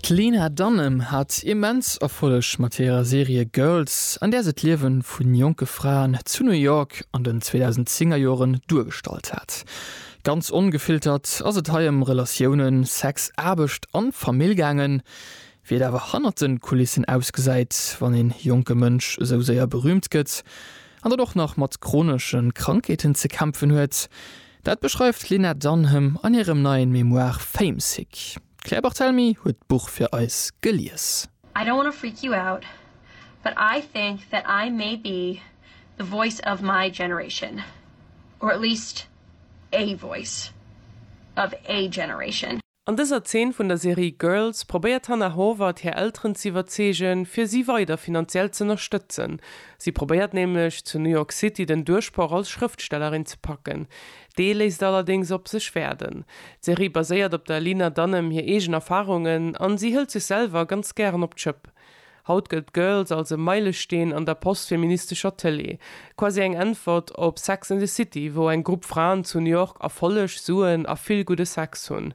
D'Lena Dunham hat immens Erfolleg mat hirer Serie Girls, an där se d'Liewe vu jonke Fraen zu New York an den 2010 er Joren duergestallt hat. Ganz ongefiltert ass et hei ëm Relatiounen, Sex, Aarbecht an Famill gaangen. Wéi et awer hannert de Kulissen ausgesäit, wann ee jonke Mënsch esou séier berüümt gëtt an dann och nach mat chronesche Krankheeten ze kämpfen huet, Dat beschreift d'Lynette Dunham an hirem neien Memoir Famesick. D'Claire Barthelemy huet d'Buch fir eis gelies. I don't wanna freak you out, but I think that I may be the voice of my generation, or at least a voice of a generation. An dëser Zeen vun der Serie Girls probéiert d'Hannah Horvath hir Elteren z'iwwerzeegen, fir si weider finanziell z'ënnerstëtzen. Si probéiert nämlech, zu New York City den Duerchbroch als Schrëftstellerin ze packen. Dee léisst allerdéngs op sech waarden. D'Serie baséiert op der Lena Dunham hir eegen Erfarungen an si hëlt sech selwer ganz gären op d'Schëpp. Haut gëllt Girls als e Meilesteen an der postfeministescher Tëlee, quasi eng Äntwert op Sex and the City, wou eng Grupp Fraen zu New York Erfolleg, Suen a vill gudde Sex hunn.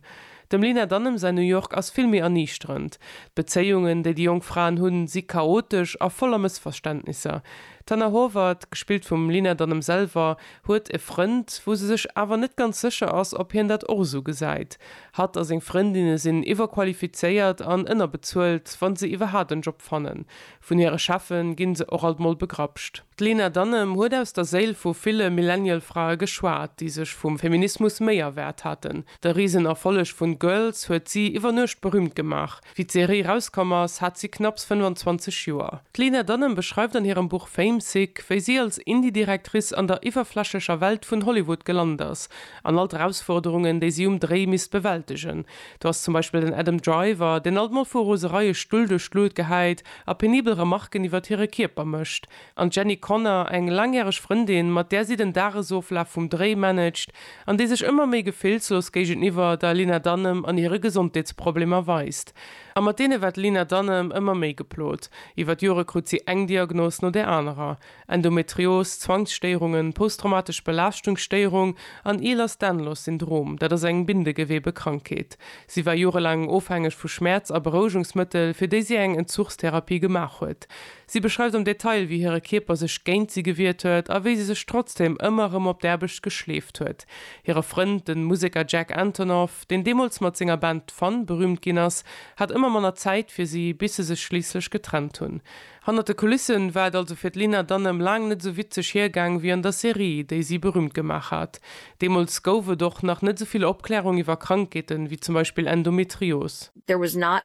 Dem Lena Dunham säin New York ass vill méi erniichterend. D'Bezéiungen, déi déi jonk Fraen hunn, si chaotesch a voller Mëssverständnisser. D'Hannah Horvath, gespillt vum Lena Dunham selwer, huet e Frënd, wou se sech awer net ganz sécher ass, ob hien dat och esou gesäit. Hatt a seng Frëndinne sinn iwwerqualifizéiert an ënnerbezuelt, wa se iwwerhaapt en Job fannen. Vun hire Cheffe gi se och alt mol begrapscht. D'Lena Dunham huet aus der Séil vu ville Millennial-Frae geschwat, déi sech vum Feminismus méi erwaart haten. De Risenerfolleg vun Girls huet si iwwer Nuecht berüümt gemaach. Wéi d'Serie rauskomm ass, hat si knapps 25 Joer. D'Lena Dunham beschreift an hirem Buch Fame Sick, wéi si als Indie-Directrice an der iwwerflächlecher Welt vun Hollywood gelant ass an all d'Erausforderungen, déi si um Dréi misst bewältegen. Do ass zum Beispill den Adam Driver, deen alt mol vu Rosereie Stull duerch d'Luut gehäit a penibel Remarken iwwert hire Kierper mécht. An d'Jenny Connor, eng laangjäreg Frëndin, mat där si den Dagesoflaf vum Dréi managt an déi sech ëmmer méi gefillslos géigeniwwer der Lena Dunham an hire Gesondheetsproblemer weist. A mat deene war d'Lena Dunham ëmmer méi geplot. Iwwer d'Jore krut si eng Diagnos no där anerer, Endometrios, Zwangsstéierungen, posttraumatesch Belaaschtungsstéierung an Ehlers-Danlos Syndrom, dat ass eng Bindegewebekrankheet. Si war jorelaang ofhängeg vu Schmäerz a Berouegungsmëttel, fir déi si eng Entzuchstherapie gemaach huet. Si beschreift am Detail, wéi hire Kierper sech géint si gewiert huet a wéi si sech trotzdeem ëmmer erëm op d'Aarbecht geschleeft huet. Hire Frënd, de Museker Jack Antonoff, deen deemools mat senger Band Fun berüümt ginn ass, hat ëmmer manner Zäit fir si, bis se sech schliisslech getrennt hunn. Hannert de Kulisse war et also fir d'Lena Dunham laang net esou witzeg hiergaang wéi an der Serie, déi si berüümt gemaach hat. Deemools gouf et och nach net esou vill Opklärung iwwer Krankheeten, wéi zum Beispill Endometrios. There was not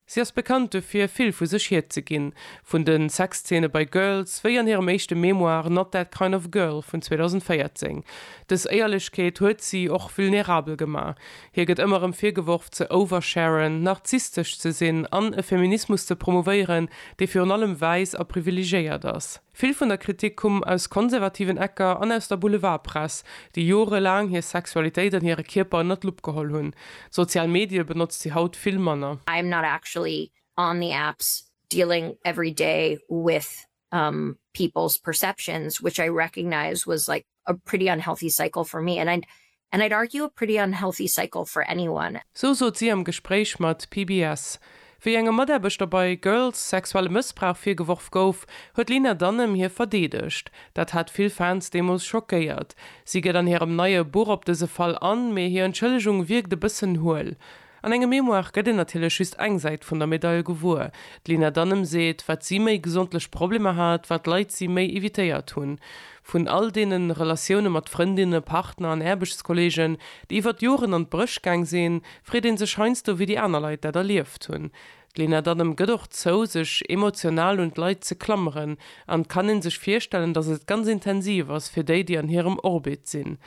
Si ass bekannt dofir, vill vu sech hierzeginn, vun de Sexzeene bei Girls, wéi an hirem éischte Memoir Not That Kind Of Girl vun 2014. Dës Éierlechkeet huet si och vulnerabel gemaach. Hir gëtt ëmmer erëm virgeworf, ze oversharen, narzisstesch ze sinn an e Feminismus ze promouvéieren, dee virun allem wäiss a privilegéiert ass. Vill vun der Kritik kumm aus konservativen Ecker an aus der Boulevardpress, déi jorelaang hir Sexualitéit an hire Kierper ënnert d'Lupp geholl hunn. Sozial Medie benotzt si haut vill manner. I am not actually on the apps dealing every day with people's perceptions which I recognize was like a pretty unhealthy cycle for me and and I'd argue a pretty unhealthy cycle for anyone. Sou sot si am Gespréich mat PBS. Wéi engem Mataarbechter bei Girls sexuelle Mëssbrauch virgeworf gouf, huet d'Lena Dunham hie verdeedegt. Dat hat vill Fans deemools schockéiert. Si geet an hirem neie Buch op dëse Fall an, mee hir Entschëllegung wierkt e bëssen huel. An engem Memoire gëtt een natierlech just eng Säit vun der Medail gewuer. D'Lina Danem seet, wat si méi gesondlech Problemer hat, wat Leit si méi evitéiert hunn. Vun all deene Relatioune mat Frëndinne, Partner an Aarbechtskolleegen, déi iwwert Joren an d'Bréch gaang sinn, freet ee sech heiansdo, wéi déi aner Leit dat erlieft hunn. D'Lena Dunham gëtt och zou, sech emotional un d'Leit ze klammeren, an et kann een sech virstellen, datt et ganz intensiv ass fir déi, déi an hirem Orbit sinn.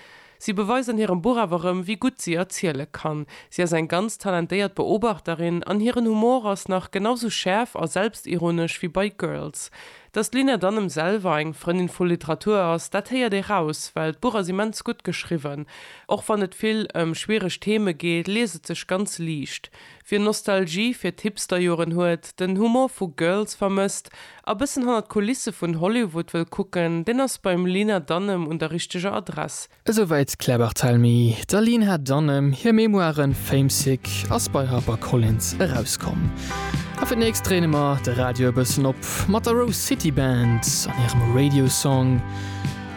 Si beweist an hirem Buch awer erëm, wéi gutt si erziele kann. Si ass eng ganz talentéiert Beobachterin, an hiren Humor ass nach genau sou schäerf a selbstironesch wéi bei Girls. Datt d'Lena Dunham selwer eng Frëndin vu Literatur ass, dat héiert ee raus, well d'Buch ass immens gutt geschriwwen. Och wann et vill ëm schwiereg Theme geet, liest et sech ganz liicht. Wien Nostalgie fir d'Hipsterjoren huet, den Humor vu Girls vermësst a bëssen hannert d'Kulisse vun Hollywood wëll kucken, deen ass beim Lina Dunham un der richteger Adress. Esouwäit d'Claire Barthelmy. Der Lina Dunham hir Memoire Famesick ass bei Harper Collins erauskomm. A fir d'nächst dréine mer de Radio e bëssen op mat der Rose City Band an hirem Radio Song.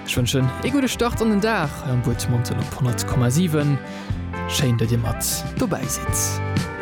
Ech wënschen ee gudde Start an den Dag am Wuertmonten op 100,7. Schéin, datt Dir mat dobäi sidd.